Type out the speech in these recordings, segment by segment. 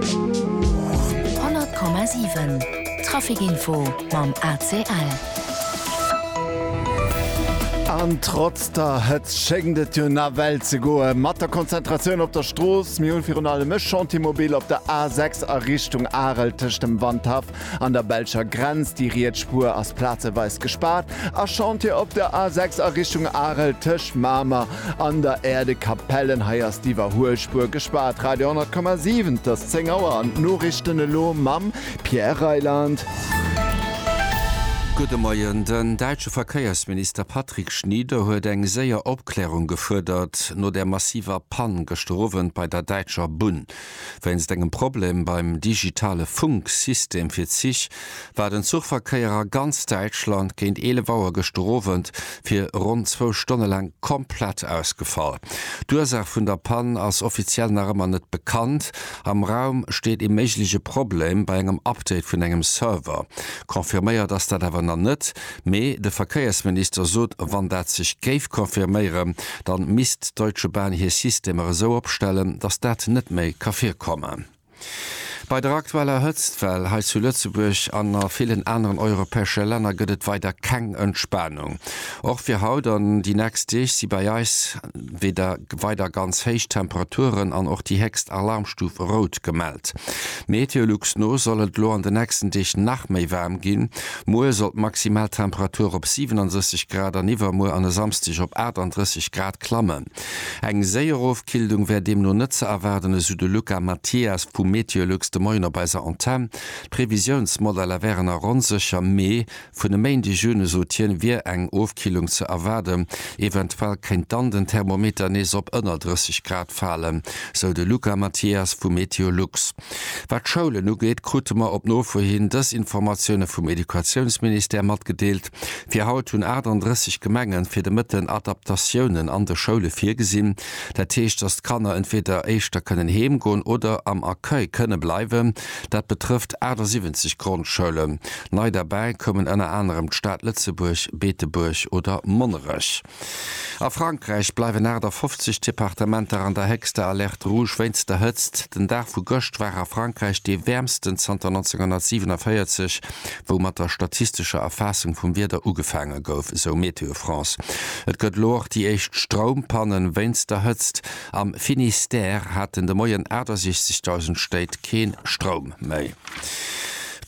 100,7 Trafic Info mam ACL. An trotz der Hëtzt schéngt et jo nawell ze goe mat der Konzentratioun op der Strooss. Mir hunn virun allem e Chantier mobil op der A6 a Richtung Arel tëscht dem Wandhaff An der belscher Grenz, déi riets Spuer ass plazeweis gespaart a Chantier op der A 6 a Richtung Arel tëscht Mamer an der Aire de Capellen. Hei ass d'Iwwerhuelspuer gespaart. Radio 100,7 't ass 10 Auer an d'Norichten elo mam Pierre Reyland. Gudde Moien. Den däitsche Verkéiersminister Patrick Schnieder huet eng séier Opklärung gefuerdert no der massiver Pann gëschter Owend bei der däitscher Bunn. Wéinst engem Problem beim digitale Funksystem fir d'Zich war den Zuchverkéier a ganz Däitschland géint 11 Auer gëschter Owend fir ronn zwou Stonne laang komplett ausgefall. D'Ursaach vun der Pann ass offiziell nach ëmmer net bekannt. Am Raum steet ee méigleche Problem bei engem Update vun engem Server. Confirméiert ass dat awer nach net. Mee de Verkéiersminister sot, wann dat sech géif confirméieren, da misst d'Deutsche Bahn hir Systemer esou opstellen, datt dat net méi ka virkommen. Bei der aktueller Hëtztwell hei zu Lëtzebuerg an a villen aneren europäesche Länner gëtt et weider keng Entspanung. Och fir haut an déi nächst Deeg si bei eis. wieder weider ganz héich Temperaturen an och déi héchst Alarmstuf rout gemellt. Meteolux no soll et elo an de nächsten Deeg nach méi waarm ginn. Muer soll d'maximal Temperatur op 67 Grad an iwwermuer an e Samsdeg op 38 Grad klammen. Eng séier Ofkillung wär deemno net ze erwaarden, esou de Luca Mathias vu Meteolux de Moien op eiser Antenn. D'Previsiounsmodeller wären a ronn sécher Mee Vun e Méindeg un, sot hien, wier eng Ofkillung ze erwaarden. Eventuell kéint dann den Thermometer nees op ënner 30 Grad falen, sou de Luca Mathias vu Meteolux. Wat d'Schoulen ugeet, krute mer op Nofro hin dës Informatioune vum Educatiounsministère matgedeelt. Fir haut hunn 38 Gemenge fir de Mëtten Adaptatiounen an de Schoule virgesinn. Dat heescht, datt d'Kanner entweeder éischter kënnen heem goen oder am Accueil kënne bleiwen. Dat betrëfft 78 Grondschoulen. Nei derbäi koumen ënner anerem d'Stad Lëtzebuerg, Beetebuerg oder Monnerech. A Frankräich bleiwen 58 Departementer an der héchster Alerte rouge wéinst der Hëtzt. Den Dag vu gëscht war a Frankräich dee wäermsten zanter 1947, wou mat der statistescher Erfaassung vum Wieder ugefaange gouf, esou Météo France. Et gëtt elo och déi éischt Stroumpannen wéinst der Hëtzt. Am Finistère haten de Moien 68.000 Stéit kee Stroum méi.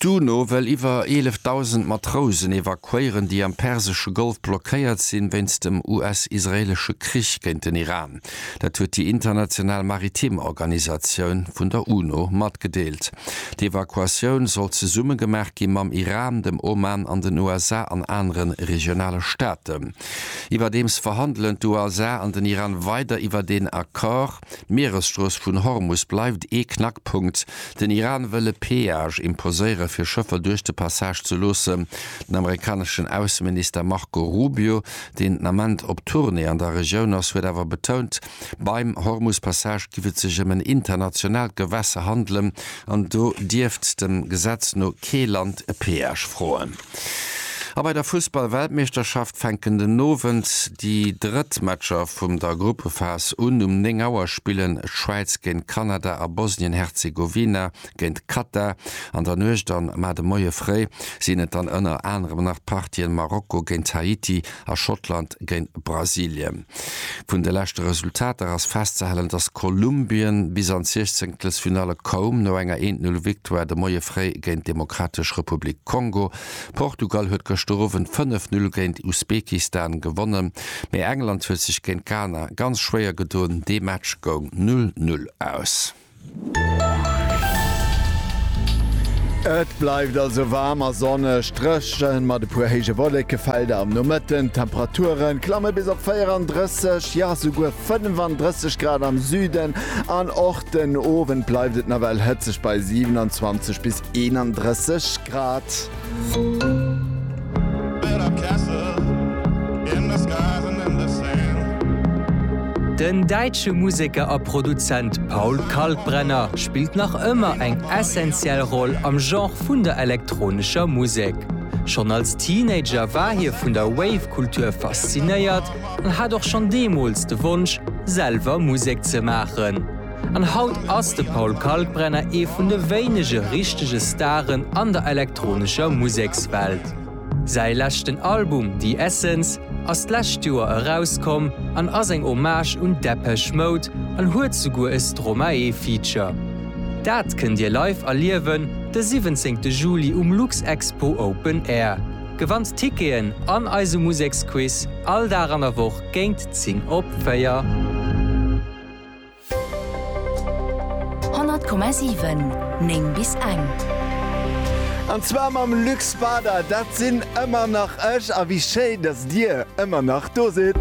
D'UNO wëll iwwer 11.000 Matrousen evakuéieren, déi am persesche Golf blockéiert sinn, wéinst dem US-israeelesche Krich géint den Iran. Dat huet déi international maritim Organisatioun vun der UNO matgedeelt. D'Evakuatioun soll zesumme gemaach gi mam Iran, dem Oman an den USA an anere regionale Staaten. Iwwerdeems verhandelen d'USA an den Iran weider iwwer een Accord. D'Mieresstrooss vun Hormus bleift ee Knackpunkt. Den Iran wëll e Peage imposéiere fir Schëffer duerch de Passage ze loossen. Den amerikaneschen Ausseminister Marco Rubio, deen den Ament op Tournée an der Regioun ass, huet awer betount, beim Hormus-Passage giff et sech ëm en internationaalt Gewässer handelen an do dierft dem Gesetz no kee Land e Peage froen. A bei der Fussball-Weltmeeschterschaft fänken den Owend déi drëtt Matcher vum der Gruppephas un. Um 9 Auer spillen d'Schwäiz géint Kanada a Bosnien-Herzegowina géint Katar. An der Nuecht an mar de Moie fréi sinn et dann ënner anerem nach d'Partien Marokko géint Haiti a Schottland géint Brasilien. Vun de leschte Resultater ass festzehalen, dass Kolumbien bis an d'Siechzenktlesfinalle koum, no enger Eent-Null-Victoire de Moie fréi géint d'Demokratesch Republik Kongo. Portugal huet gëschter Owend fënnef Null géint Usbekistan gewonnen, mee England huet sech géint Ghana ganz schwéier gedoen, dee Match goung Null-Null aus. Et bleift also waarm a sonneg, dréchen mat e puer héije Wolléckefelder am Nomëtten. D'Temperaturen klamme bis op 34, jo esouguer 35 Grad am Süden an och den Owend bleift et nawell hëtzeg bei 27 bis 31 Grad. Den däitsche Museker a Produzent Paul Kalkbrenner spillt nach ëmmer eng essentiell Roll am Genre vun der elektronescher Musek. Schonn als Teenager war hie vun der Wave-Kultur faszinéiert an hat och schonn deemools de Wonsch, selwer Musek ze maachen. An haut ass de Paul Kalkbrenner ee vun de wéinege richtege Staren an der elektronescher Musekswelt. Säi leschten Album The Essence ass d'lescht Joer erauskomm an ass eng Hommage un Depeche Mode an huet souguer e Stromae-Feature. Dat kënnt Dir live erliewen de 17 Juli um Luxexpo Open Air. Gewannt Ticketen an eise Museksquiz all Dag an der Woch géint 10 op 4. 100,7 9 bis eng. An zwar mam Luc Spader, dat sinn ëmmer nach ech a wéi schéi dass Dir ëmmer nach do sidd.